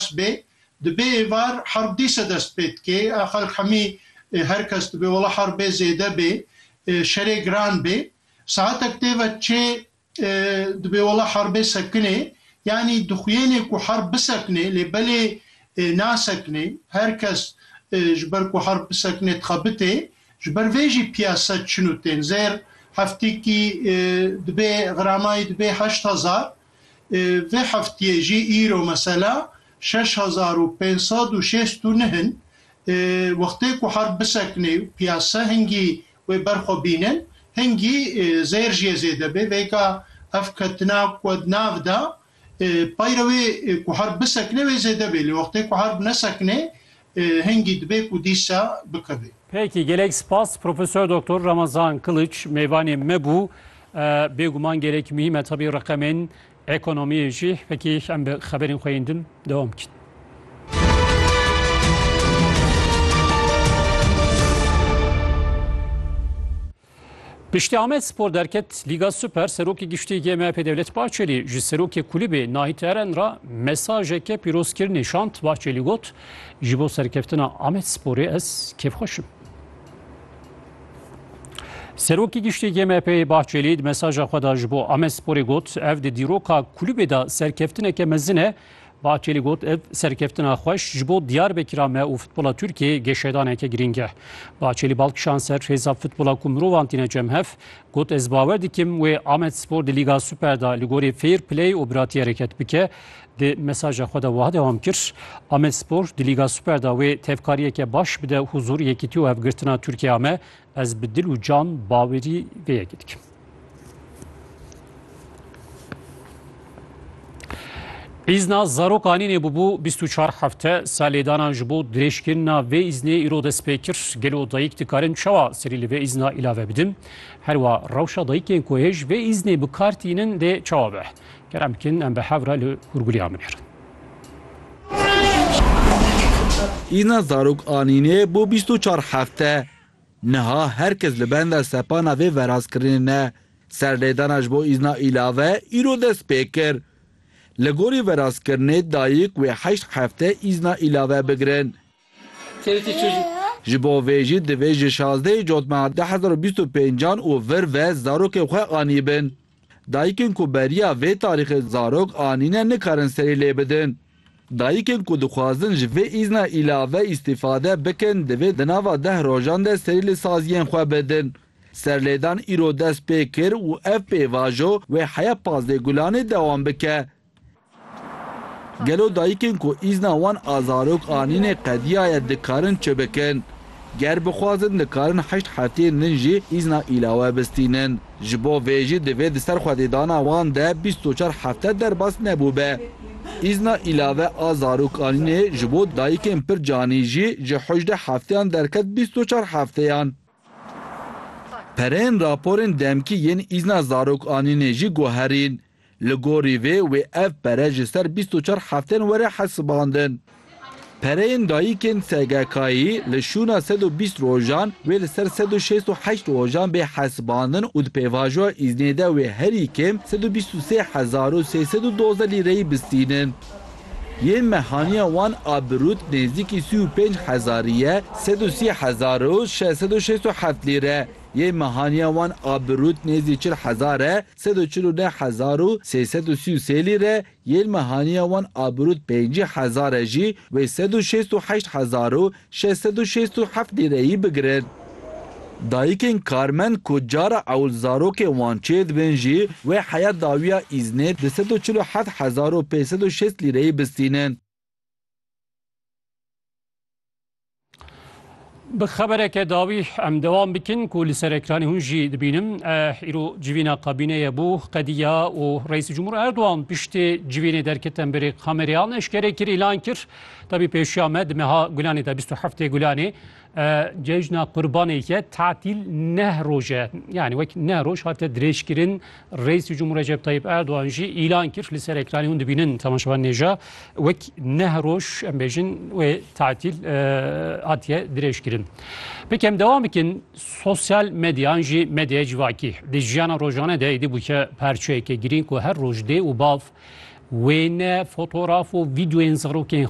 baş bê. Di bê êvar herb dîse dest pê dikê. A xelk hemî her kes dibê wela herbê zêde bê, şerê giran bê. Saetek tê ve çê dibê wela herbê sekinê. Yanî dixuyênê ku herb bisekinê lê belê nasekinê. Her kes ji ber ku herb bisekinê dixebitê. Ji ber vê jî piyase çin û tên. Zêr heftîkî dibê xiramay dibê heşt hezar. Vê heftiyê jî îro mesela şeş hezar û pênc sed û şêst û neh in. Wextê ku herb bisekinê û piyase hingî wê ber xwe bîne, hingî zêr jiyê zêde bê. Vêka ev ketina ku di nav de peyre wê ku herb bisekinê wê zêde bê. Lê wextê ku herb nesekinê Hingî dibe ku dîsa bikeve. Peki gelek spas Professor Doktor Ramazan Kılıç mêvanê me bû. Bêguman gelek muhîm e tabî reqemên ekonomiyê jî. Peki em bi xeberên xwe yên din dewam bikin. Piştî Amed Spor derket Lîga Super Serokê Giştî yê MHP Dewlet Bahçelî ji serokê kulîbê Nahit Eren re mesajeke pîrozkirinê şand. Bahçelî got, Ji bo serkeftina Amed Sporê ez kêfxweş im. Serokê Giştî yê MHP'yê Bahçelî di mesaja xwe de ji bo Amed Sporê got, ev di dîroka kulîbê de serkeftineke mezin e, Bahçeli got ev serkeftina xweş ji bo Diyarbekira me û futbola Tirkiyeyê geşedaneke girîng e. Bahçeli bal kişand ser hêza futbola ku mirovan tîne cemhev, got ez bawer dikim wê Amedspor di Lîga Super de li gorî fair play û biratî hereket bike. Di mesaja xwe de wiha dewam kir, Amedspor di Lîga Super de wê tevkariyeke baş bide huzur, yekîtî û hevgirtina Tirkiyeya me Ez bi dil û can bawerî vê yekê dikim. Îzna zarokanî nêbûbû 24 hefte salêdanan ji bo dirêjkirina vê îznê îro dest pê kir. Gelo dayîk dikarin çawa serî li vê îzna îlave bidin? Herwa rewşa dayîkên ku hêj vê îznê bi kar tînin dê çawa be? Kerem bikin em bi hev re li hûrgûliya min herin. Îna zarok anîne bo bîst û çar hefte. Niha her kes li benda sepana vê verazkirinê ne. Serlêdana ji bo îzna îlave îro dest pê kir. Li gorî verazkirinê dayik wê heşt hefte îzna îlave bigirin. Ji bo vê jî divê ji şazdehê cotmeha du hezar û bîst û pêncan û vir ve zarokên xwe anîbin. Dayikên ku beriya vê tarîxê zarok anîne nikarin serî lê bidin. Dayikên ku dixwazin ji vê îzna îlave îstîfade bikin divê di nava deh rojan de serî li saziyên xwe bidin. Serlêdan îro dest pê kir û ev pêvajo wê heya pazdeh gulanê dewam bike. Gelo dayikên ku îzna wan a zarok anîne qediya ye dikarin çi bikin? Ger bixwazin dikarin heşt hefteyên din jî îzna îlawe bistînin. Ji bo vê jî divê di ser xwedêdana wan de bîst û çar hefte derbas nebûbe. Îzna îlave a zarok anînê ji bo dayikên pir canî jî ji hojde hefteyan derket bîst û çar hefteyan. Pereyên raporên demkî yên îzna zarok anînê jî guherîn. Li gorî vê wê ev pere ji ser bîst û çar hefteyên were hesibandin. Pereyên dayikên SGK'yî li şûna sed û bîst rojan wê li ser sed û şêst û heşt rojan bê hesibandin û di pêvajoya îznê de wê herî kêm sed û bîst û sê hezar û sê sed û dozdeh lîreyî bistînin. Yên mehaniya wan a bi rût nêzdîkî sî û pênc hezarî ye, sed û sî hezar û şeş sed û şêst û heft lîre. Yên mehaniya wan a bi rût nêzdî çil hezar e, sed û çil û neh hezar û sê sed û sî û sê lîre, yên mehaniya wan a bi rût pêncî hezar e jî wê sed û şêst û heşt hezar û şeş sed û şêst û heft lîreyî bigirin. Dayikên karmend ku cara ewl zarokên wan çêdibin jî wê heya dawiya îznê di sed û çil û heft hezar û pênc sed û şêst lîreyî bistînin. Bi xebereke dawî em dewam bikin ku li ser ekranê hûn jî dibînin. Îro civîna kabîneye bû qediya û Reîsî Cumhur Erdogan piştî civînê derketin berê kamerêyan eşkere kir îlan kir. Tabî pêşiya me di meha Gulanê de bîst û heftê Gulanê cejna qurbanêke tatîl neh roj e. Yanî wek neh roj hate dirêjkirin Reîsê Cumhur Recep Tayyip Erdogan jî îlan kir li ser ekranê hûn dibînin temaşevan nêja wek neh roj em bêjin wê tatîl hatiye dirêjkirin. Pekem devam bikin sosyal medyan jî medyaya civakî di jiyana rojane de êdî bûke parçeyeke girîng ku her roj dê û bav wêne fotoğraf û videoyên zarokên xwe